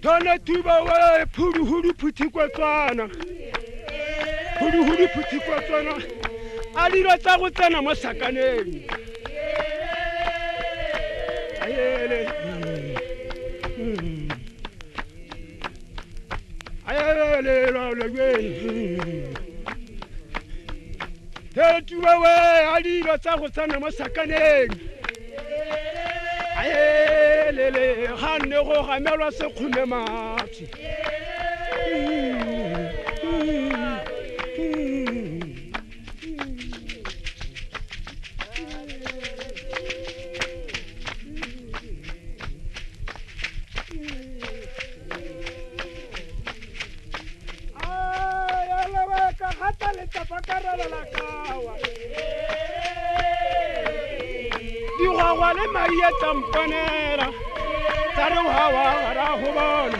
Tona tuba we phuru huru phuthi kwa tswana. Phuru huru phuthi kwa tswana. A dilo tsa go tsena mo sakaneng. Ayele. Mm. Mm. tetuwewe a dilo tsa go tsena mo sakaneng aelele ga nne go gamelwa sekgome matsi digwagwa le mai a tsampanela tsa re wa wa gara go bona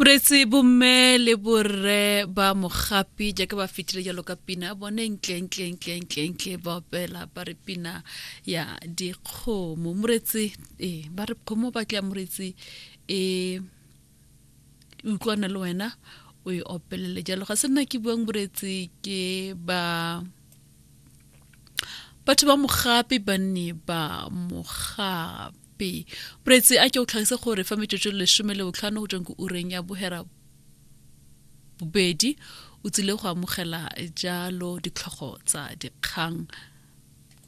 boretse bomme le borre ba mogapi jaaka ba fetile jalo ka pina bone ntlentlentlentlentle ba opela ba re pina ya dikgomo moretse e ba re kgomo ba tla moretse e utlwana le wena o e opelele jalo ga se nna ke buang boretse ke ba batho ba mogape ba ne ba mogape boretsi a ke o tlhagise gore fa metsotso lesome le botlhano go tsweng ko ureng ya bohera bobedi o tsile go amogela jalo ditlhogo tsa dikgang